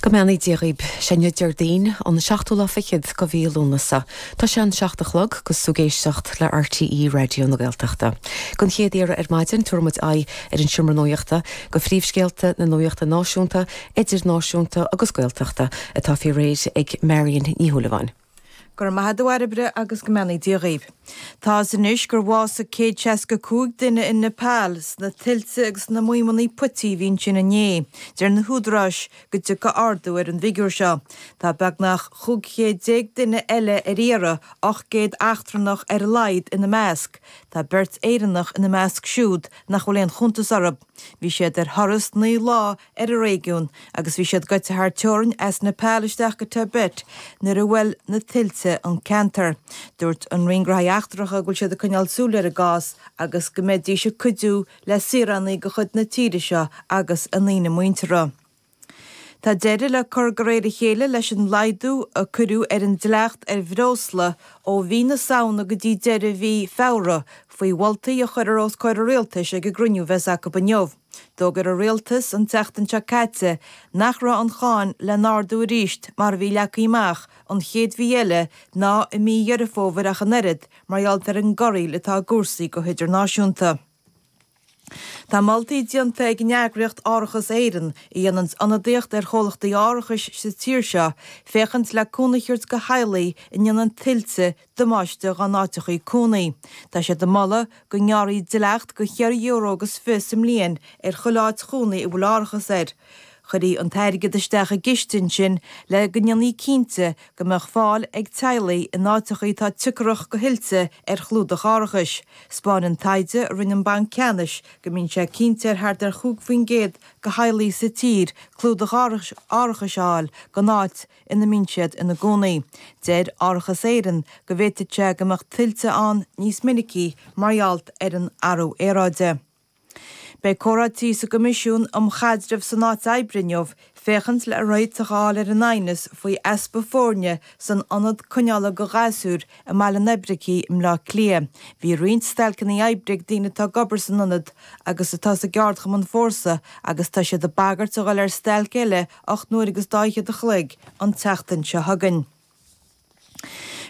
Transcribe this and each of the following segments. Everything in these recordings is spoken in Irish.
Go mbeannaí Dia dhaoib. Sé inniu Diardaoin, an seachtú lá fichead de mhí Lúnasa. Tá sé an seacht a chlog is tú ag éisteacht le RTÉ Raidió na Gaeltachta. Gon chéad iarraidh ar maidin tabharfaidh muid aghaidh ar an Seomra Nuachta go príomhscéalta na nuachta náisiúnta, idirnáisiúnta agus Gaeltachta atá faoi réir ag Marion Ní Shúilleabháin. Go raibh maith a'd a Bhairbre agus go mbeannaí Dia dhaoibh. Tá 'fhios anois gur bhásaigh céad seasca cúig duine in Nepal sna tuilte agus sna maoimeannaí puití a bhí ansin inné. Deir na húdaráis go dtiocfaidh ardú ar an bhfigiúr seo. Tá beagnach chúig chéad déag duine eile ar iarraidh, ocht gcéad eachtrannach ar a laghad ina measc. Tá beirt Éireannach ina measc siúd nach bhfuil aon chuntas orthu. Bhí siad ar thuras naoi lá ar an réigiún agus bhí siad goite thar teorainn as Nepal isteach go Tibet nuair a bhuail na tuilte an ceantar. Dúirt an Roinn Gnóthaí Eachtracha go bhfuil siad ag coinneáil súil ar an gcás agus go mbeidís ag cuidiú le saoránaigh de chuid na tíre seo agus a ndaoine muinteartha. Tá deireadh le cur de réir a chéile leis an laghdú a cuireadh ar an dleacht ar bhreosla ó mhí na Samhna go dtí deireadh mhí Feabhra faoi mholtaí a chuirfear os comhair an Rialtais ag an gcruinniú bheas acu inniu. D'fhógair an rialtas an tseachtain seo caite nach raibh an cháin le n-ardú arís mar a bhí leagtha amach an chéad mhí eile ná i mí Dheireadh Fómhair ach an oiread mar gheall ar an gcorraíl atá i gcúrsaí go hidirnáisiúnta. Tá moltaí déanta ag an eagraíocht Árachas Éireann, a dhéanann ionadaíocht ar chomhlachtaí árachais sa tír seo, féachaint le cúnamh a thabhairt do theaghlaigh a ndéanann tuilte damáiste dhá n-áiteacha cónaí. Tá siad ag moladh go ngearrfaí dleacht de cheithre euro agus fiche sa mbliain ar chuile áit chónaí a bhfuil árachas air. Chuirfí an t-airgead isteach i gciste ansin le go ndéanfaí cinnte go mbeadh fáil ag teaghlaigh in áiteacha atá tiocrach do thuilte ar chlúdach árachais. 'Spáin an taighde a rinne an Banc Ceannais go mbíonn sé cinnte ar thart ar chúig faoin gcéad de theaghlaigh sa tír clúdach árachais a fháil don áit ina mbíonn siad ina gcónaí. Deir Árachas Éireann go bhféadfadh sé go mbeadh tuilte ann níos minicí mar gheall ar an athrú aeráide. Beidh comhráití sa gCoimisiún um Chaidreamh san Áit Oibre inniu féachaint le réiteach a fháil ar an aighneas faoi easpa foirne san Ionad Coinneála do Ghasúir i mBaile an Oibricigh i mBleá Cliath. Bhí roinnt stailceanna oibre ag daoine atá ag obair san ionad agus atá sa gceardchumann Fórsa agus tá siad ag bagairt a dhul ar stailc eile ocht n-uaire agus daichead a chloig an tseachtain seo chugainn.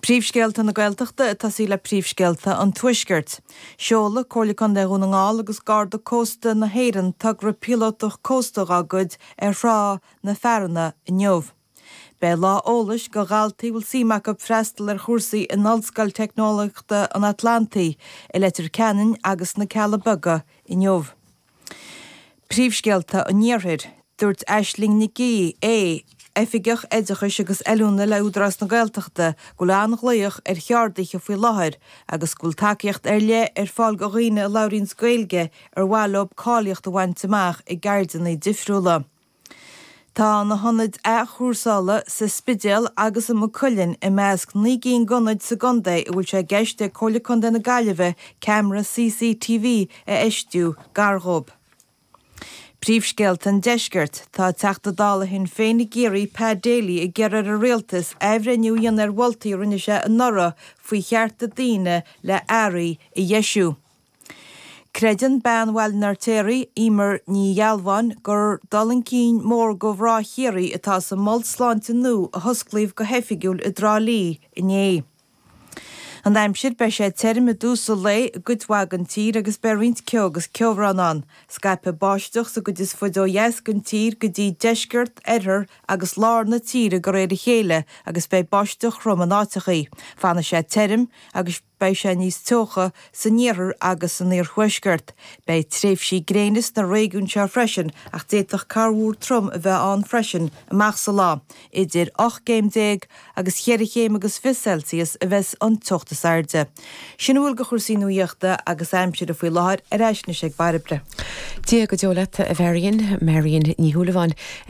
Príomhscéalta na Gaeltachta ag tosú le príomhscéalta an Tuaiscirt. Seolfaidh Comhairle Contae Dhún na nGall agus Garda Cósta na hÉireann togra píolótach cósta dá gcuid ar Thrá na Fearana inniu. Beidh lá eolais do dhaltaí a bhfuil suim acu freastal ar chúrsaí in Ollscoil Teicneolaíochta an Atlantaigh i Leitir Ceanainn agus sna Cealla Beaga inniu. Príomhscéalta an Iarthair. Dúirt Aisling Nic Aoidh, Oifigeach Oideachais agus Oiliúna le Údarás na Gaeltachta go bhfuil an-ghlaoch ar cheardaithe faoi láthair agus go bhfuil tacaíocht ar leith ar fáil do dhaoine a labhraíonns Gaeilge ar mhaith leo cáilíocht a bhaint amach i gceirdeanna difriúla. Tá na hionaid athchúrsála sa Spidéal agus i Maigh Cuilinn i measc naoi gcinn d'ionaid sa gcontae a bhfuil sé i gceist ag Comhairle Contae na Gaillimhe ceamara CCTV a fheistiú gar dhóibh. Príomhscéalta an Deiscirt. Tá Teachta Dála Shinn Féin i gCiarraí Pa Daly ag iarraidh ar an Rialtas athbhreithniú a dhéanamh ar mholtaí a rinne sé anuraidh faoi chearta daoine le earraí a dheisiú. Creideann Bean Bhaile an Fheirtéaraigh, Emer Ní Ghealbháin, gur dul chun cinn mór do mhná Chiarraí atá sa mhol sláinte nua a hosclaíodh go hoifigiúil i dTrá Lí inné. An aimsir, beidh sé tirim i dtús an lae i gcuid mhaith den tír agus beidh roinnt ceo agus ceobhrán ann. Scaipfidh báisteach sa gcuid is faide ó dheas den tír go dtí deisceart, oirthear agus lár na tíre de réir a chéile agus beidh báisteach throm in áiteachaí. Fanfaidh sé tirim agus. Beidh sé níos teocha san iarthar agus san iarthuaisceart. Beidh tréimhsí gréine sna réigiúin seo freisin ach d'fhéadfadh corrmhúr trom a bheith ann freisin amach sa lá. Idir ocht gcéim déag agus cheithre chéim agus fiche Celsius a bheidhs an teocht is airde. Sin a bhfuil de chúrsaí nuaíochta agus aimsire faoi láthair ar ais anois ag Bairbre. Dia go deo leat, a Mharion. Marion Ní Shúilleabháin a.